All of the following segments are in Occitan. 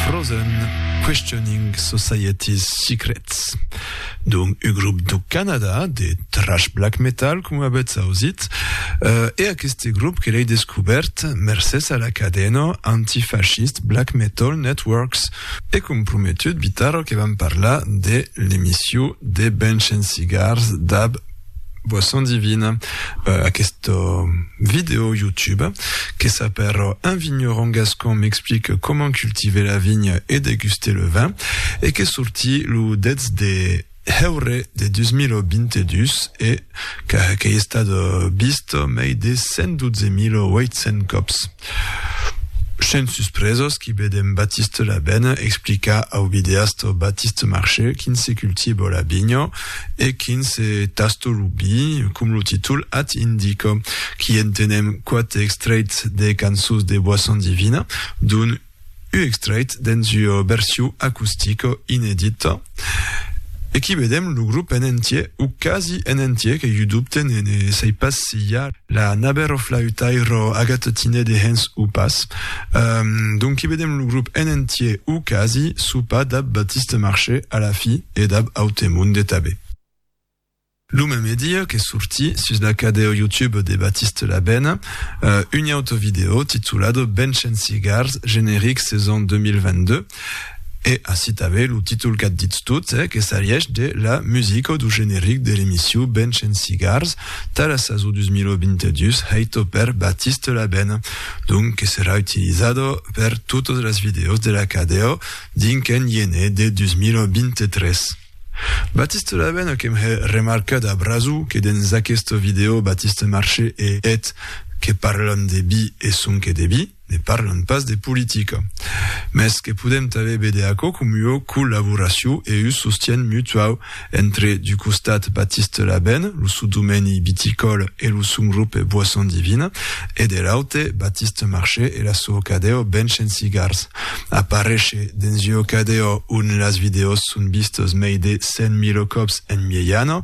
Frozen, Questioning Society's Secrets. Dom un grop do Canada de trash black metal, com avètz ausit, e aqueste grop que l'ei descobèrt mercés a la cadena antifascist Black Metal Networks, e comprometut Bitarro que vam parlar de l'emission de Bench and Cigars dab Boisson Divine, euh, aquest vidéo YouTube, que s'appelle Un vigneron gascon m'explique comment cultiver la vigne et déguster le vin, et que sorti le 10 de heure de 2022 et qu'a, qu'ei estat vist mei de 112.800 cops. Sens suspresas qu'i vedèm Batiste Labène explicar au videasta Batiste Marché quin se cultiva la vinha e quin se tasta lo vi, com lo títol ath indica. Qu'i entenèm quate extrèits des cançons de Boisson Divine, dont U extrait dens ua version acustica inedita e qu'i vedem lo grop en entier o quasi en entier qu'ei u dubte ne ne sai pas si i a la naber o flautaire Agathe Tiné dehens o pas donc qu'i vedem lo grop en entier o quasi sopar dab Baptiste Marché a la fi e dab Autemond de Tabé. Lo meme dia qu'es sorti sus la cadeo YouTube de Baptiste Labène, un auto video titulat Benchen Cigars, generic saison 2022, e ací tanben lo títol qu'a ditz tot, que s'arièch de la musica du generic de l'emission Benchen Cigars tà la sason 2022 hèita per Baptiste Labène, donc que serà utilizada per totas las videos de la cadeo dins qu'en iene de 2023. Baptiste Laben a que'm hè remarcat a braso que dens aqueste vidèo Baptiste Marché e eth que parlan de bi e sonque de bi, ne parlan pas de politica. Mès que podem tanben véder aquò com ua collaboracion e un sostien mutuau entre d'u costat Baptiste Laben, lo sou domèni viticòl e lo son grupe Boisson Divine e de l'aute Baptiste Marché e la soa cadèo Bench and Cigars. Aparéisher dens ua cadèa ont las vidèos son vistes mei de 100.000 còps en miejana,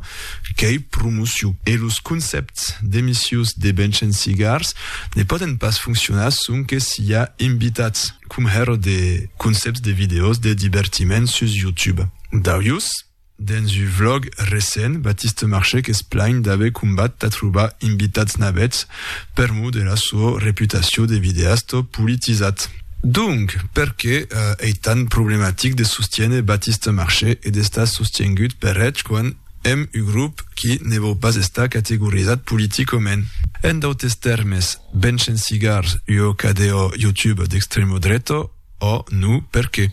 qu'ei promociu. E los concèpts d'emissius de benchen cigars ne pòden pas foncionar sonque s'i a invitats, com hèr de concèpts de vidèos de divertiment sus YouTube. D'aujus, Dens un vlog recent, Baptiste Marchec es plaint d'aver combat tà trobar invitats navets per mor de la sò reputacion de videasta politizat. Donc, perqué ei tant problematic de sostiéner Baptiste Marchec e d'estar sostiengut per eth quan èm un grop qui ne vòu pas estar categorizat politicament? En d'autes tèrmes, benchen cigars, ua cadèa YouTube d'extremodreta, ò no perqué.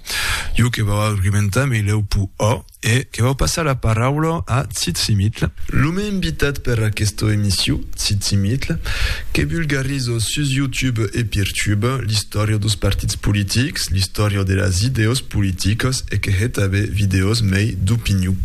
Jo que vau argumentar me lèu po ò e que vau passar la paraula a Tsitsimitl. Lo mei invitat per aquesta emission, Tsitsimitl, que vulgariza sus YouTube e Peertube l'istòria dos partits politics, l'istòria de las idèos politicas e que hè tanben vidèos mei d'opinion.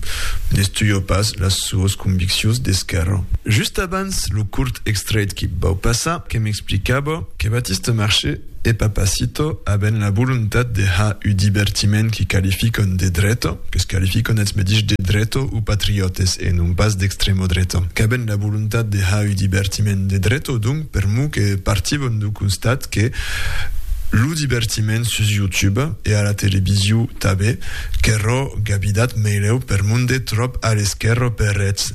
N'estuja pas las soas conviccions d'esquèrra. Just abans lo curt extrèit que vau passar que m'explicava que Batiste Marchais, E Papacito, avent la volontat de ha u divertiment qui qualifiquon de dreto, que es qualifiquon eths medich de dreto u patriotes e non pas d'extremo dreto, qu'avent la volontat de ha u divertiment de dreto, donc per mo que partivon du constat que lo divertiment sus YouTube e a la televisio tabé, qu'erro gabidat meileu per monde tròp a l'esquerro per eths,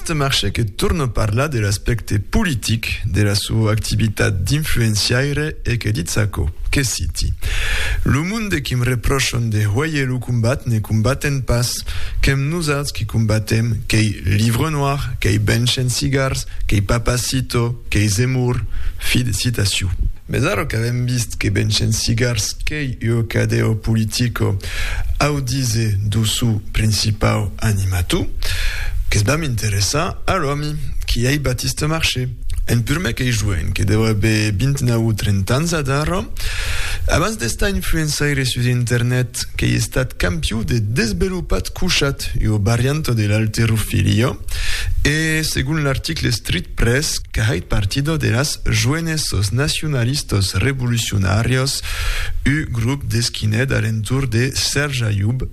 Aquest marche que torna parlar de l'aspècte politic de la soa activitat d'influenciaire e que ditz aquò, que citi, Lo monde qui'm repròchan de hoèir lo combat ne combaten pas, qu'èm nosauts qui combatem, qu'ei Livre Noir, qu'ei Benchen Cigars, qu'ei Papacito, qu'ei Zemmour. Fi de citacion. Mès ara qu'avèm vist que Benchen Cigars qu'ei ua cadèa politica Au dise do sou principau animatou, Que's vam interessar a l'òmi, qui ei Batiste Marché, un purmec ei joen que deu aver vint-nau o trenta ans ad ara, abans d'estar influençaire sus internet, qu'ei estat campiou de desbelopat couchat ua varianta de l'alterofilio e, segon l'article Street Press, qu'ahait partida de las joenessos nacionalistos revolucionarios u grop d'esquinèt alentour de Serge Ayoub,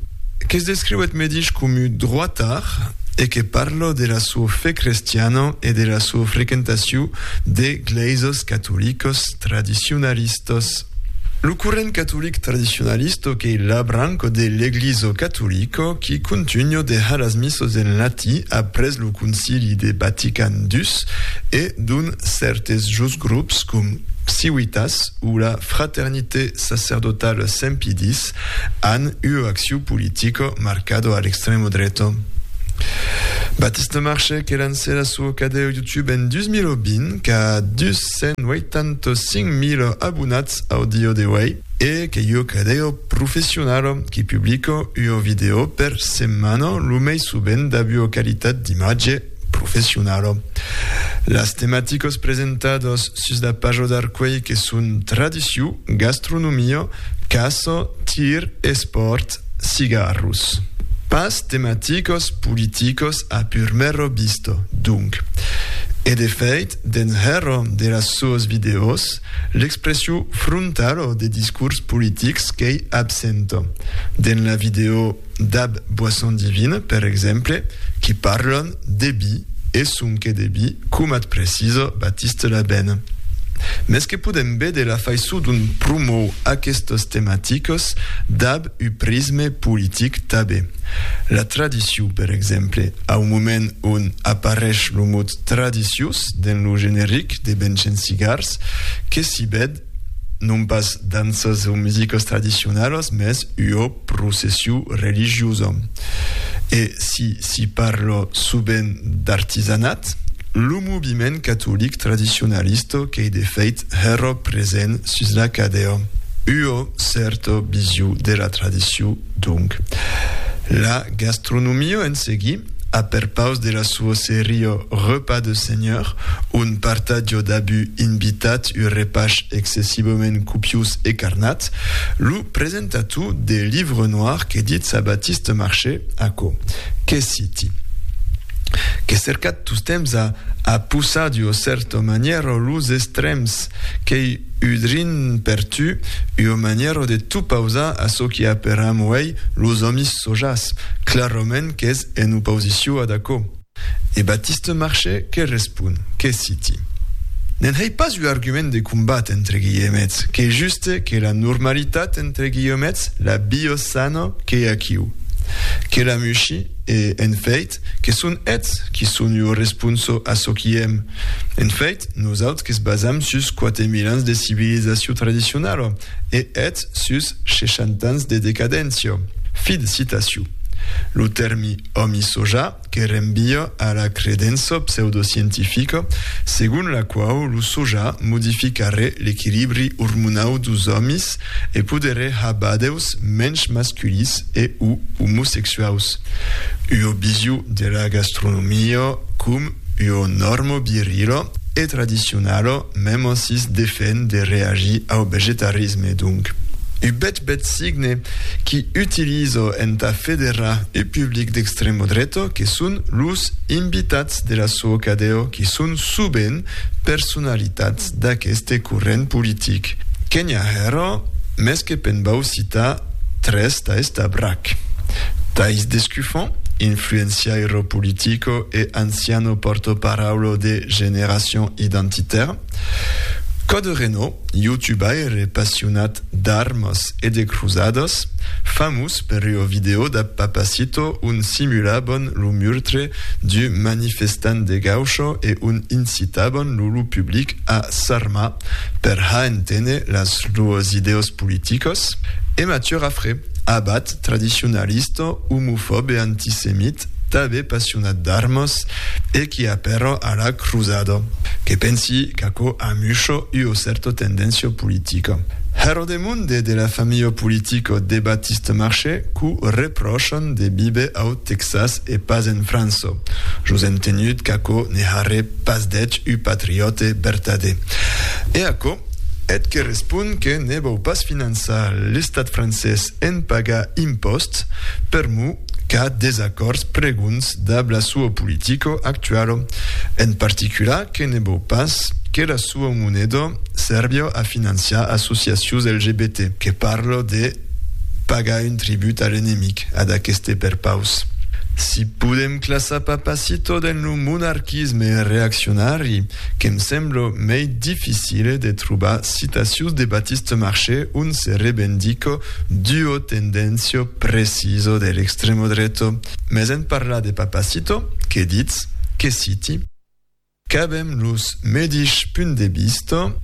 que's descriuèt medish comu droatard e que parlò de la so fe crestiana e de la so frequentaciu de glèisas catolicas tradicionalistas. Lo corrent catolic tradicionalista qu'ei la branca de l'Eglisa catolica qui contunha de har las missas en latí après lo Concili de Vatican ii e dont cèrtes jos grops com Ciuitas, o la Fraternité sacerdotale Sempidis, an ua acciu politica marcada a l'extremo dreta. Baptiste Marchais que lancè la soa cadèu YouTube en 2020 qu'a 285.000 abonats au dia d'auèi e qu'es ua cadèu professionala qui publica ua vidèo per setmana lo mei sovent dab ua qualitat d'imatge professionala. Las tematicas presentadas sus la paja d'Arcueil que son tradicion, gastronomia, caça, tir, espòrt, cigarros. Pas tematicas politicas a purmera vista, donc. E de fèit, dens hèra de las soas vidèos, l'expression frontala de discors politics qu'ei absenta. Dens la vidèo. dab boisson divine, per exemple, qui parlon de bi e sonque de bi, comat preciso Batiste la ben. Mes que podem vede la faiço dont promou aquestos tematicos dab u prisme politic tabe. La tradicion, per exemple, au moment on aparesh lo mot tradicios dens lo generic de Benchen Cigars, que s'i ved non pas danças o musicas tradicionalas, mès ua processiu religiosa. E si s'i parla sovent d'artisanat, lo moviment catolic tradicionalista qu'ei de fait hèra present sus la cadèa ua cèrta vision de la tradicion Donc, la gastronomia en seguit, a perpaus de la sua seria Repas de Senhor, un partatge d'abú invitat, un repach excessivament copiós e carnat, lo presentator de Livre Noir que ditz a Baptiste Marché, Aquò que citi, que cercat tostemps a a pousar d'ua cèrta manièra los extrèms Qu'ei ua drin per tu, ua manièra de t'opausar a çò qui aperam uèi los òmis sojats, clarament qu'es en oposició ad aquò. E Batiste Marchais que respon, Que citi. Ne'n hèi pas ua argument de combat entre guilhemets, qu'ei juste que la normalitat entre guilhemets, la biosano qu'ei aquiu. Que la mushi e, en fèit, Eth que son eths qui son ua responso a çò qui èm. En fèit, nosaut que's basam sus quate mil ans de civilizacion tradicionala e eths sus sheshanta ans de decadéncia. Fi de citacion. Lo tèrmi òmi soja que renvia a la credença pseudoscientifica segon la quau lo soja modificarè l'equilibri ormonau dos òmis E poderé ha badèus mensh masculis e o omosexuaus. Ua visio dera gastronomia com ua norma virila e tradicionala mèm'assís defèn de reagir au vegetarisme, donc, ua bèth bèth signe qui utiliza entà federar ua public d'extrèma dreta que son los invitats dera sua cadèa qui son sovent personalitats. d'aqueste corrent politic, que n'i a hèra, mès que pe'n vau citar tres tais tà brac. Tais Descuffon, influenciairo politico e anciano pòrto-paraulo de Génération Identitaire, Code Renaud, youtubaire passionat d'armas e de cruzadas, famós per ua vidèo dab Papacito ont simulaban lo murtre d'u manifestant de Gaucho e ont incitaban lo lo public a s'armar per ha enténer las luas idèos politicas, e Mathieu Raffray, abat tradicionalista, omofòb e antisemit, tanben passionat d'armas e qui a però ara cruzada, que pensi qu'aquò amusha ua cèrta tendéncia politica. Hèra de monde de la familha politica de Baptiste Marché qu'o repròchan de víver au Tèxas e pas en França, jos entenut qu'aquò ne harré pas d'eth un patriòte vertadèr. E aquò eth que respon que ne vòu pas finançar l'Estat francés en pagar impòsts, per mo qu'a desacòrds pregonds dab la sua politico actualo, en particular que ne vòu pas que la sua moneda sèrvia a financiar associacions LGBT, que parla de pagar un tribut a l'enemic, ad aqueste perpaus. Si podem classar Papacito dens lo monarquisme reaccionari, Que'm semblo mei dificile de trobar citacius de Batiste Marché on se rebendico d'uo tendencio preciso de l'extremo dreto. Mes en parlar de Papacito, que ditz? Que citi? Qu'avem los medish punt de vista,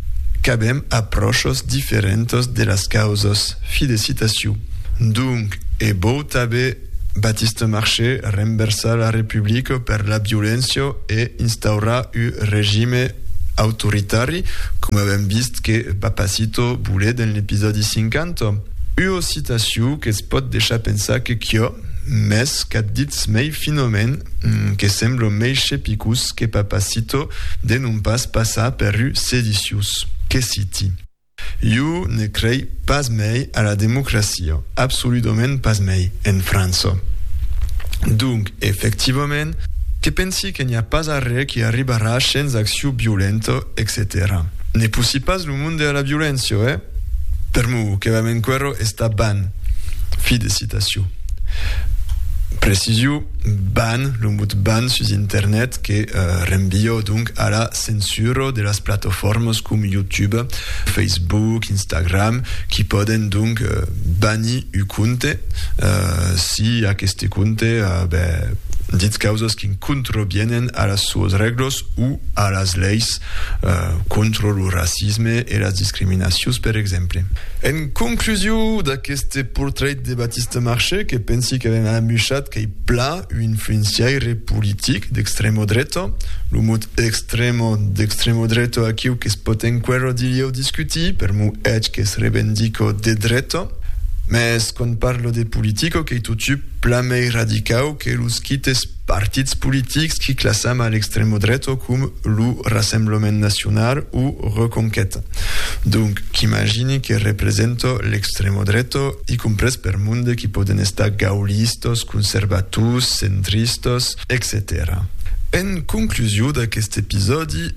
qu'avem aprochos diferentos de las causos, fi de citaciu. Donc, e vou tabe Baptiste Marché renversar la Republica per la violéncia e instaurar un regime autoritari, com avèm vist que Papacito volé dens l'episòdi 50. Ua citacion que's pòt deishar pensar que quia, mès qu'ath ditz mei finament que sembla mei chepicós que Papacito de non pas passar per un sediciós. Que citi. Jo ne crei pas mei a la democracia, absoludament pas mei, en França. Donc, efectivament, que pensi que n'i a pas arrè qui arribarà shens accion violenta, etcetèra. Ne poussi pas lo monde a la violéncia, eh? Per mo, que vam enquerò estar ban. Fi de citacion. Preciso, ban, lo mot ban sus internet que renviò donc a la censura de las platofòrmas com YouTube, Facebook, Instagram, qui pòden donc banir un compte si aqueste compte ditz causas qui contravienen a las suas règlas o a las leis contra lo racisme e las discriminacions, per exemple. En conclusion d'aqueste portrait de Baptiste Marchais, que pensi qu'avèm amuchat qu'ei plan, Un influenciaire politic d'extremo dreta, lo mot extremo d'extremo dreta aquiu que's pòt enquera dilhèu discutir, per mo hèt que's revendico de dreta, mès quand parlo de politica qu'ei totu plan mei radicau que los quites partits politics qui classam a l'extremo dreta com lo Rassemblement Nacional o Reconquèta. Donc, qu'imagini que representa l'extremo dreta. Stremo dreto, i comprés per monde qui pòden estar gaullistas, conservators, centristas, etcetèra. En conclusiu d'aquest episòdi,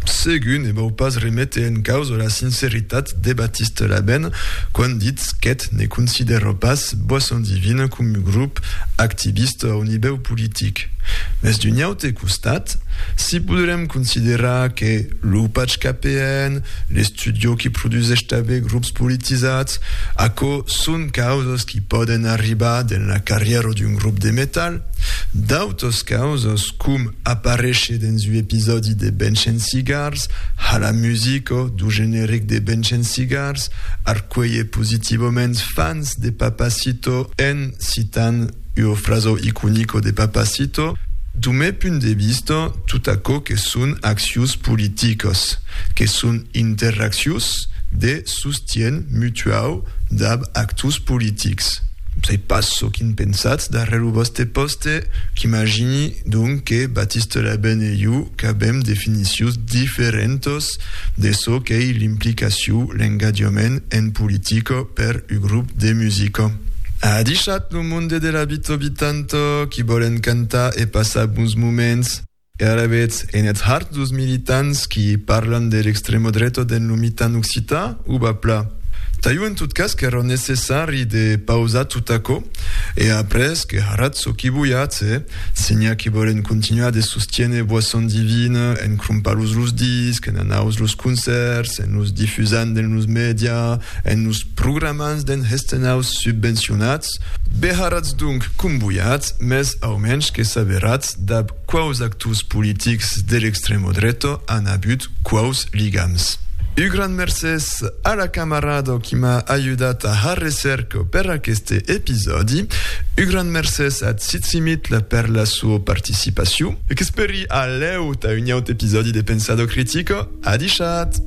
segur ne vau pas remete en causa la sinceritat de Baptiste Labène quand ditz qu'eth ne considèra pas Boisson Divine coma grop activista au nivèu politic. Mès d'un aute costat, si poderem considerar que lo patge KPN, L'estudi que produsèsh tanben grops politizats, aquò son causas qui pòden arribar dens la carrièra d'un grop de metal. D'autas causas, com aparéisher dens ua episòdi de Bench and Cigars, ha la musica dau generic de Bench and Cigars arcuelhet positivament fans de Papacito en citant Io fraso iconico de Papacito, du me punt de vista, tot aquò que son accius politicas, que son interaccius de sostien mutuau dab actors politics. Sai pas çò quin pensatz darrèr lo vòste pòste, qu'imagini donc que Batiste Labène e jo qu'avèm definicions diferentas de çò qu'ei l'implicaciu, l'engadiament en politica per u grop de musica. A adishat! Lo monde de la Bito Bitanto qui vòlen cantar e passar bons moments. E alavetz en eth hard dos militants qui parlan de l'extremo dreto dens lo mitan occitan o va pla? Taio en tot cas qu'erò necessari de pausar tot aquò e après que haratz çò qui voiatz e, si n'i a qui vòlen continuar de sostiéner Boisson Divine en crompar-los los discs, en anaus los concèrts, en los difusant dens los media, En los programans d'en hestenhaus subvencionats, beharatz donc comboiats, mès au mensh que saberatz dab quaus actors politics de l'extremo dreto an abut quaus ligams. U grand mercés a la camarado qui m'a ajudat a har recerco per aqueste episòdi. U grand mercés a Tsitsimitl per la sua participaciu. Qu'esperi a lèu tà un aut episòdi de Pensado Critico. Adishat!